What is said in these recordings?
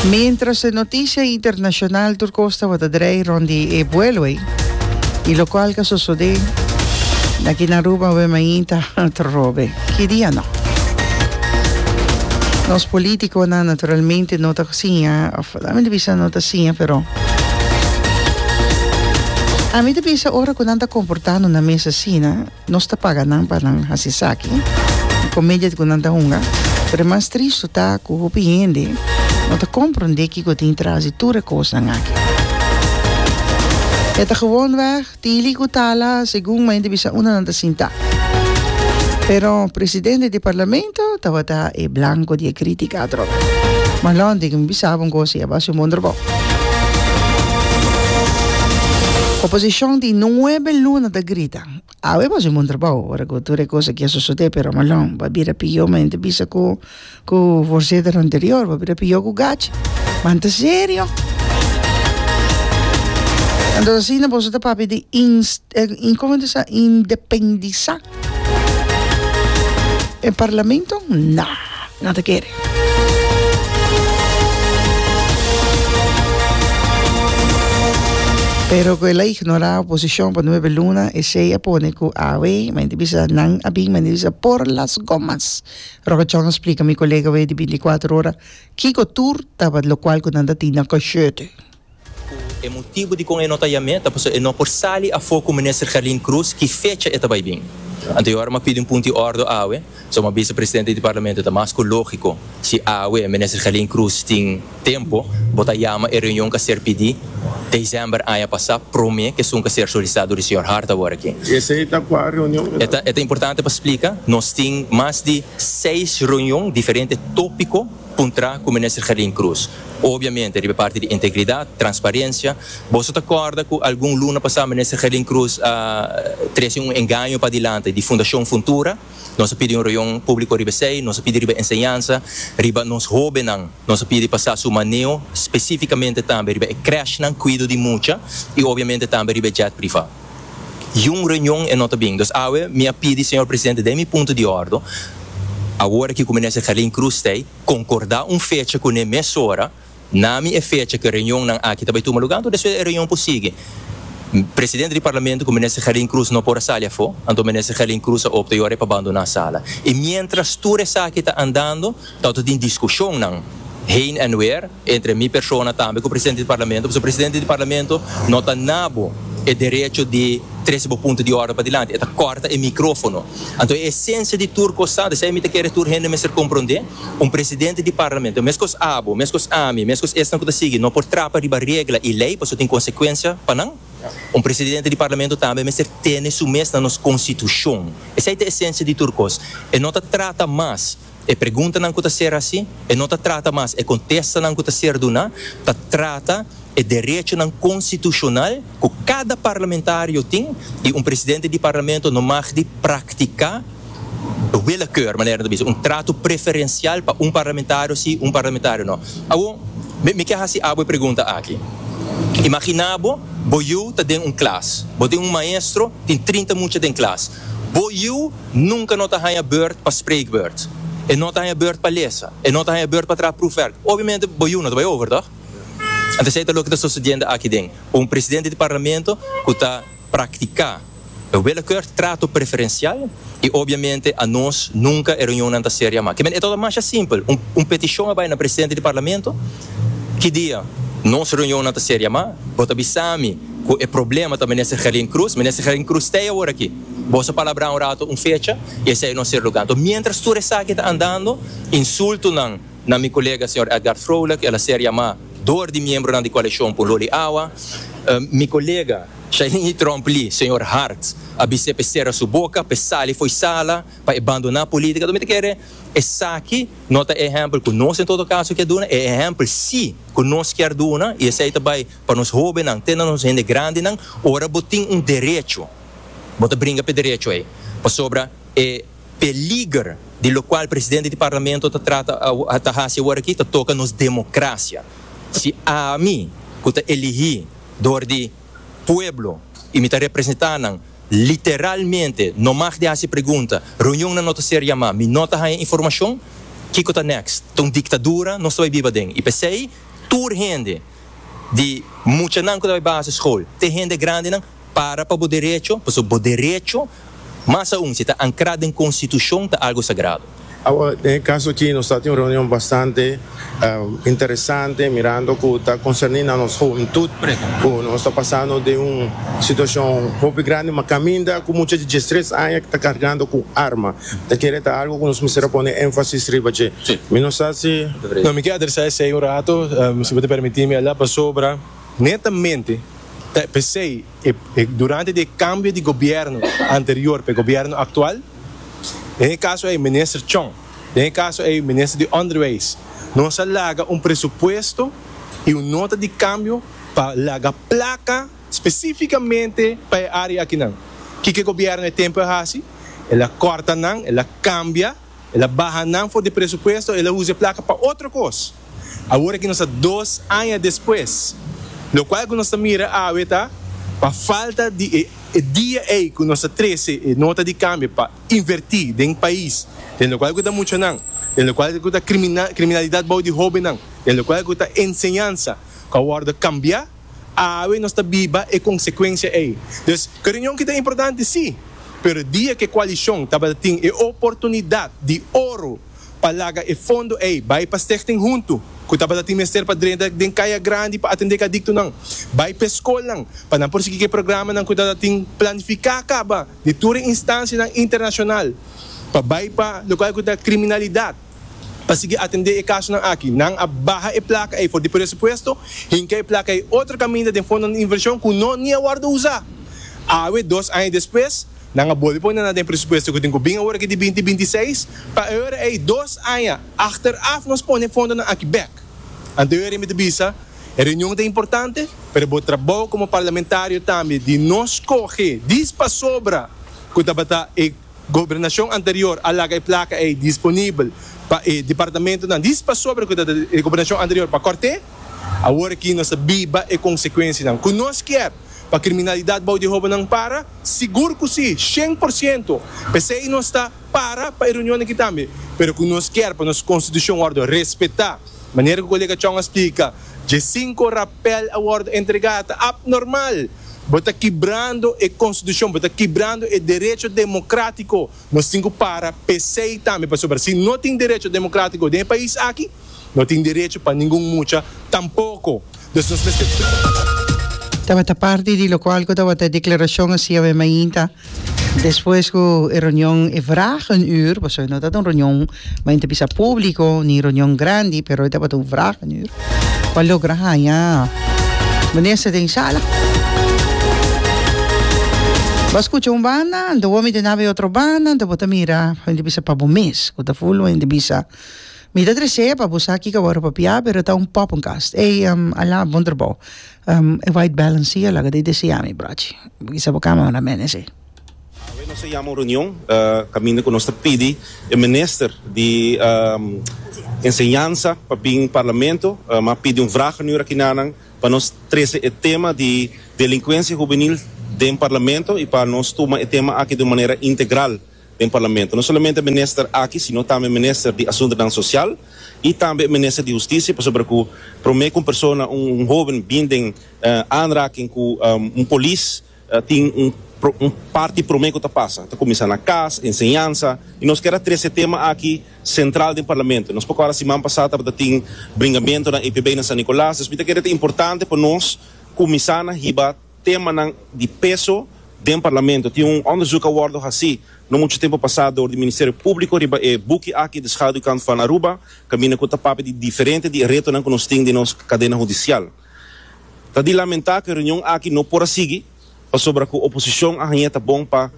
Mientras e noticia internacional tur cos tabata draai rond di e vuelo ei y locual ca sosode na aki na Aruba web main ta otro robe ki dia no. Nos politiconan naturalmente no ta siña of la mi ta bisa no ta siña pero ami ta bisa ora cu nan ta comportando na mes asina Nos ta paga nan pa nan hasi esaki. E comedia cu nan ta hunga. Pero e mas tristo ta cu hopi hende no ta compronde kico tin tras di tur e cosnan aki. E ta gewoonweg tili cu tala segun mente bisa unda nan ta sinta. Pero presidente di Parlamento tabata e blanco di e critica atrobe. Ma londe cu mi bisaba un cosa y aba haci un bon trabao. Oposicion tin nuebe luna ta grita. Awe mas un bon trabou ora ku tur e kos aki a sosodé pero malon bo a bira pihó mi ta bisa ku ku voorzitter anterior bo a bira pihó ku gachi man ta serio anto asina boso ta papia di ins kome ta sa independisá e parlamento nah. no ta kere. Pero cu el a ignora oposicion pa nuebe luna esey a pone cu awe mende bisa nan a bin mende bisa por las gomas Roca Chong a splica mi colega awe di binti y cuater ora kico tur taba locual cu nan ta tin na Cosherte. Ku e motibu dikon e no ta yam'é ta pasobra e no por sali afó ku Minister Gerlin Croes ki fecha e ta bai bin. Anto e ora m'a pidi un punti ordo awe, so m'a bisa Presidente di Parlamento ta mas ku lógiko si awe Minister Gerlin Croes tin tempu bo ta yama e reunion k'a ser pidi December aña pasá promé ke sun k'a ser solisitá dor di señor Hart awor aki. Esei ta kua reunion mira? E ta importante pa splika, nos tin mas di seis reunion diferente tópiko. Puntra cu Minister Gerlin Cruz. Obviamente riba e parti di integridad, transparencia. Boso ta corda cu algun luna pasa Minister Gerlin Cruz a trece un engaño padilanti di Fundacion Funtura. Nos a pidi un reunion publico riba esey. Nos a pidi riba enseñanza, riba nos hobennan. Nos a pidi pa sa su maneo, specificamente tambe riba e crèshnan, cuido di mucha y obviamente tambe riba e jet priva. y un reunion e no ta bin. Dus awe mi a pidi señor presidente den mi punto di ordo, awor aki cu minister Gerlin Cruz ta ey, concorda un fecha cune mesora, na mi e fecha cu reunionnan aki ta bay tuma lugar, anto despues e reunion por sigui. Presidente di Parlamento cu minister Gerlin Cruz no por a sali afo, anto minister Gerlin Cruz a opta yora e pa bandona sala. Y mientras tur esaki ta andando, Tau ta tin discusionnan heen en weer entre mi persona tambe cu Presidente di Parlamento, pasobra Presidente di Parlamento no ta nabo e derecho di trece bo punto di orde padilanti, e ta corta e microfono. Anto e esencia di tur cosnan, esei mi ta kere tur hende mester compronde, un Presidente di Parlamento, mescos abo, mescos ami, mescos esnan cu ta sigui, no por trapa riba regla y ley, pasobra tin consecuencia pa nan. Un Presidente di Parlamento tambe mester tene su mes na nos Constitucion. Esei ta esencia di tur cos. E no ta trata mas. E preguntanan ku ta ser hasi e no ta trata mas e kontestanan ku ta ser duná, ta trata e derechonan konstitushonal ku kada parlamentario tin i un presidente di parlamento no mag di praktiká willekeur, manera nan ta bisa, un tratu preferensial pa un parlamentario sí, un parlamentario no. Awor, mi mi ke hasi abo e pregunta aki. Imaginá bo, bo yu ta den un klas. Bo tin un maestro, tin trinta mucha den klas. Bo yu Nunka no ta haña beurt pa spreekbeurt. E no ta haña beurt pa lesa. E no ta haña beurt pa traha proefwerk. Obviamente bo yu no ta bai over, tòg? Ant esei ta loke ta sosodiende aki den un presidente di Parlamento ku ta praktiká e willekeur trato preferensial i obviamente anos nunka e reunionnan ta ser yamá. Kimin e tabata masha simpel. Un un petishon a bai na presidente di Parlamento, Ki dia nos reunionnan ta ser yamá? Bo ta bisa mi ku e problema ta Minister Gerlin Croes? Minister Gerlin Croes ta ei aworakí? Boso a palabrá un rato un fecha y esei no ser lugar. Enton, mientras tur esaki ta andando, insultonan na mi colega señor Edgard Vrolijk, el a ser yamá door di miembronan di coalición pa un loli awa. Mi colega Shailingi Tromp-Lee, señor Hart, a bis'é pa e sera su boca, pa e sali fo'i sala, pa e bandoná política. Enton, mi ta kere esaki no ta e ehempel cu nos en todo caso kier duna, e ehempel sí cu nos kier duna y esei ta bai pa nos hobennan te na nos hende grandenan, ora bo tin un derecho, Bo ta bringa p'e derecho ei, pasobra e peliger di lokual presidente di Parlamento ta trata awo, ta hasi awor aki ta toka nos demokrasia. Si ami, ku ta elihí dor di pueblo i mi ta representá nan, literalmente no mag di hasi pregunta, reunionnan no ta ser yamá, mi no ta haña informashon, kiko ta next? Ta un diktadura nos ta bai biba den. I p'esei tur hende, di muchanan ku ta bai baseskol te hende grandinan, Para pa bo derecho, pasobra bo derecho, mas aun si ta ankrá den konstitushon, ta algu sagrado. Awa, den e kaso akí nos ta tin un reunion bastante interesante, mirando ku ta konserní na nos huventut, ku nos ta pasando den un situashon hopi grandi, ma kaminda ku mucha di diestres aña ta kargando ku un arma. Ta kere ta algu ku nos mester a pone énfasis riba dje. Mi no sa si. No, mi ke adresá esei un rato, si bo ta permití mi, Elda, pasobra. Netamente, ta e p'esei, e durante di e kambio di gobièrnu anterior pa e gobièrnu aktual, den e kaso ei minister Chong, den e kaso ei minister di Onderwijs, nos a laga un presupuesto i un nota di kambio pa laga plaka spesífikamente pa e área akinan. Kiko e gobièrnu e tempu a hasi? El a kòrta nan, el a kambia. El a baha nan for di presupuesto, el a usa e plaka pa otro kos. Awor aki nos ta dos aña despues, lokual ku nos ta mira awe ta pa falta di e dia ei ku nos ta trese e nota di kambio pa invertí den pais, den lokual ku ta muchanan, den lokual ku ta kriminalidat bou di hóbennan, den lokual ku ta enseñansa ku a wòrdu kambiá. Awe nos ta biba e konsekuensia ei. Dus, ke reunion kita importante? Sí. Pero dia ke koalishon tabata tin e oportunidat di oro pa laga e fondo ei bai pa Stichting Huntu, ku tabata tin mester pa drenta den kaya grandi pa atendé kadiktonan, bai p'e skolnan pa nan por sigui k'e programanan ku tabata tin planifiká kaba di tur e instansianan internashonal pa bai pa lokal ku ta kriminalidat. Pa sigui atendé e kasonan aki, nan a baha e plaka ei for di presupuesto, hinka e plaka ei otro kaminda den fondonan di invershon ku no ni a wòrdu usá. Awe, dos aña despues, nan a bolbe pone nan den presupuesto ku tin ku bin awor aki di binti binti i seis. Pa e ora ei, dos aña achteraf, nos pone e fondonan aki bèk. Anto e ora ei mi ta bisa, e reunion ta importante, pero bo trabou komo parlamentario tambe di no skohe dispasobra ku tabata e. Gobernashon anterior a laga e plaka ei disponibel pa e departamentunan di pasobra ku ta den e gobernashon anterior pa kòrt'é. Awor aki nos ta biba e konsekuensianan ku nos kier pa kriminalidat bou di hóbennan para? Sigur ku sí, shen por siento! P'esei nos ta para pa e reunionnan aki tambe. Pero ku nos kier pa nos konstitushon wòrdu respetá. Manera ku kolega Chong a splika, dje sinku rapèl a wòrdu entregá ta apnormal. Bo ta kibrando e konstitushon, bo ta kibrando e derecho demokratiko, nos tin ku para p'esei tambe, pasobra si no tin derecho demokratiko den e pais aki, no tin derecho pa ningun mucha tampoko. Entonces nos mester. Tabata parti di lokual ku tabata e deklarashon hasiawe mainta. Despues cu e reunion e vraag een uur, pasobra e no tabata un reunion men ta bisa publico ni reunion grandi, pero e tabata un vraag een uur, pa logra haña minister den sala. Bo a scucha un banda, anto bo a mira nabe otro banda, anto bo ta mira fen ta bisa pa bo mes, cu ta full wen ta bisa, mi ta tresea pa bo sa kico bo a ropa pia, pero ta un poppenkast. Ey, Alain, bon trabao. E white balance si a laga di desea mi brochi. Bo kisa bo kama mandan mene si. Awe nos a yama un reunion kaminda ku nos ta pidi e minister di enseñansa pa bin parlamento. Mi a pidi un vraag aan u rakinanan pa nos trese e tema di delinkuensia hubenil den parlamento i pa nos tuma e tema aki di un manera integral. den Parlamento. No solamente Minister aki sino tambe Minister di Asuntronan Sosial y tambe e Minister di Husticia pasobra cu prome cu un persona, un un hoben bin den aanraking cu un polis tin un un parti prome cu ta pasa ta cuminsa na cas, enseñansa y nos kier a trese e tema aki central den Parlamento. Nos poko a siman pasa tabata tin bringamentonan EPB na San Nicolas, dus mi ta kere ta importante pa nos cuminsa na hiba Temanan di peso den Parlamento. Tin un onderzoek a wordo haci no mucho tempo pasa door di Ministerio Publico riba e buki aki De Schaduwkant van Aruba caminda cu ta papia di diferente di e retonan cu nos tin den nos cadena hudicial. Ta di lamenta cu e reunion aki no por a sigui pasobra cu oposicion a haña e ta bon pa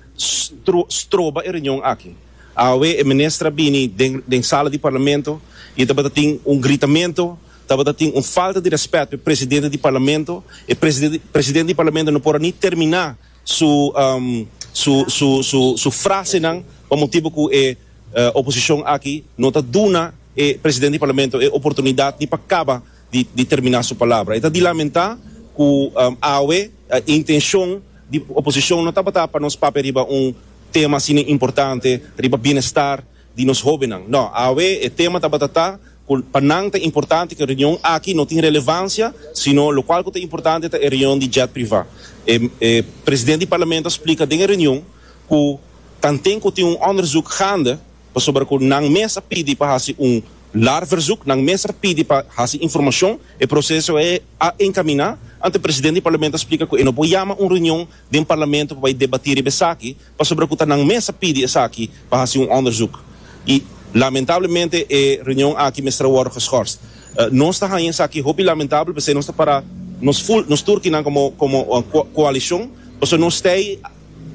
stroba e reunion aki. Awe e Minister a bini den sala di Parlamento y tabata tin un gritamento Tabata tin un falta di respet p'e presidente di parlamento. E presidente di parlamento no por a ni termina su su frasenan pa motibu cu e oposicion aki no ta duna e presidente di parlamento e oportunidad ni pa caba di termina su palabra. E ta di lamenta cu awe e intencion di oposicion no tabata pa nos papia riba un tema asina importante riba bienestar di nos hobennan. No, awe e tema tabata ta cu pa nan ta importante cu e reunion aki no tin relevancia, sino locual cu ta importante ta e reunion di jet privá. E e presidente di Parlamento a splica den e reunion cu tanten cu tin un onderzoek gaande, pasobra cu nan mes a pidi pa haci un lar verzoek, nan mes a pidi pa haci informacion, e proceso ei a encamina, anto e presidente di Parlamento a splica cu e no por yama un reunion den Parlamento pa bay debatí riba esaki, pasobra ku ta nan mes a pidi esaki pa hasi un onderzoek i lamentablemente e reunion aki mester a wòrdu geschorst. Nos ta haña esaki hopi lamentabel p'esei nos ta para nos full, nos tur kinan komo komo koalishon pasobra nos stei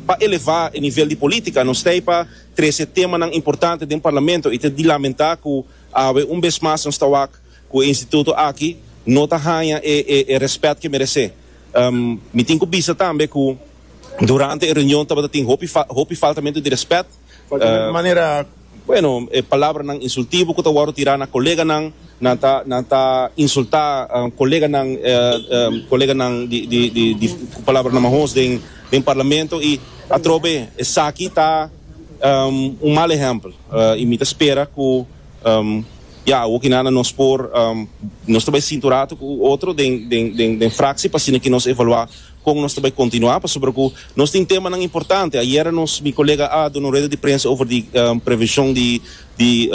pa elevá e nivel di polítika, nos stei pa trese temanan importante den parlamento i ta di lamentá ku awe un bes mas nos ta wak ku e instituto aki no ta haña e e e rèspèt ke meresé. Mi tin ku bisa tambe ku. Durante e reunion tabata tin hopi faltamentu di respet. Bueno, e palabranan insultivo ku ta wòrdu tirá na koleganan, nan ta insultá koleganan koleganan di ku palabranan mahos den parlamento i atrobe. Esaki ta un mal ehèmpel i mi ta spera ku ya awor ki nada nos por nos ta bai sintu ratu ku otro den fraksi pa asina ke nos evaluá. Kon nos ta bai kontinuá pasobra ku nos tin temanan importante. Ayera nos, mi kolega a duna un rueda di prensa over di prevenshon di di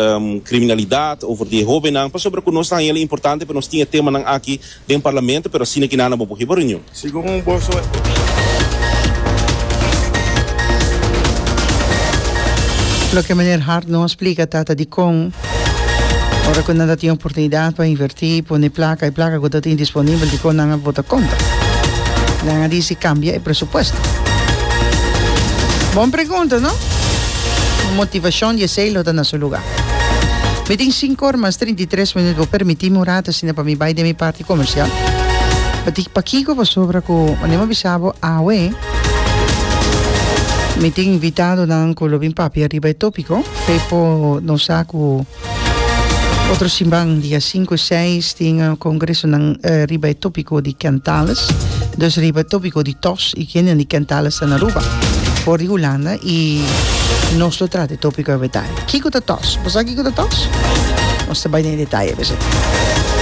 kriminalidat, over di e hóbennan, pasobra ku nos ta haña el importante pa nos tin e temanan aki den parlamento, pero asina kinanan bo por hiba reunion. Segun boso e Loke Meneer Hart no a splika ta ta dikon. Ora cu nan ta tin oportunidad pa inverti, pone placa, e placa cu ta tin disponibel dicon nan a bota contra? Nan a dici cambia e presupuesto. Bon pregunta, no? Motivacion di esey lo ta na su lugar. Mi tin cinco ora mas trinta i tres minuut. Bo permitimi un rato asina pa mi bay den mi parti comercial. Pakico? Pasobra cu mane mi a bisa bo awe mi tin invitadonan cu lo bin papia riba e topico. Pepo nos sa ku otro simban dia 5 i 6 tin kongresonan eh, riba e tópiko di kentales, dus riba e tópiko di tos i kende di kentales ta na Aruba for di Hulanda i nos lo trata e tópiko awe detaye. Kiko ta tos? Bo sa kiko ta tos? Nos ta bai den e detaye awe.